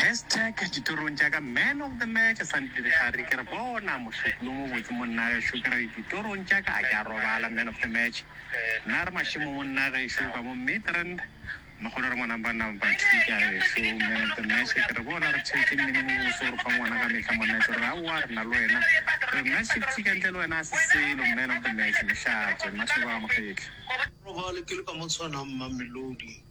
Hashtag Ditorong tša ka Man of the Match Sandi Dirigari ke re bona mohlophi yo mobotse monnagešo ke re ditorong tša ka a ke a robala Man of the Match Nna re mašemo monnagešo ka mo Midrand Mogolo re mo number number two ke a ešo Man of the Match ke re bona re theetše mmino mobose o re fa ngwana ka mehla monna ke re aowa re na le wena re nna šifthi ka ntle le wena a se selo Man of the Match Lehlatšo Mmashoba Gamokgetla. Robale ke le ka mo tshwanang Mamelodi.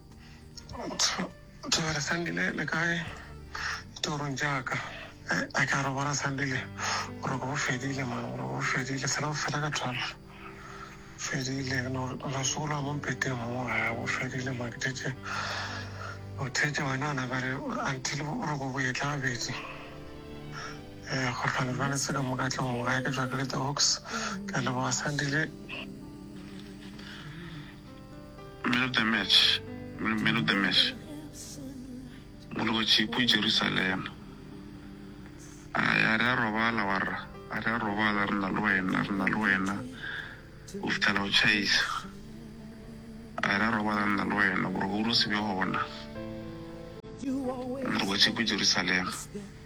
Thobela Sandile, le kae? Ditorong tša ka. Eh, a ke a re bona Sandile, boroko bo fedile man, boroko bo fedile, fela bo fela ka twelve. Fedile, no, no sola mo mpeteng mo, ga bo fedile man, ke thetše. O thetše wena, ona ba re, until boroko bo etla gabedi. Eh, kgotlwane ba le se ka moka tlong, ga ke jwa ke le the hawks, ke a leboga Sandile. Man of the match, Man of the match, Molotši ko Jerusalema, A re a re a robala wa rra, a re a robala re na le wena, re na le wena, O fetela go tšhaisa, A re a robala re na le wena, boroko bo no se be gona, Molotši ko Jerusalema.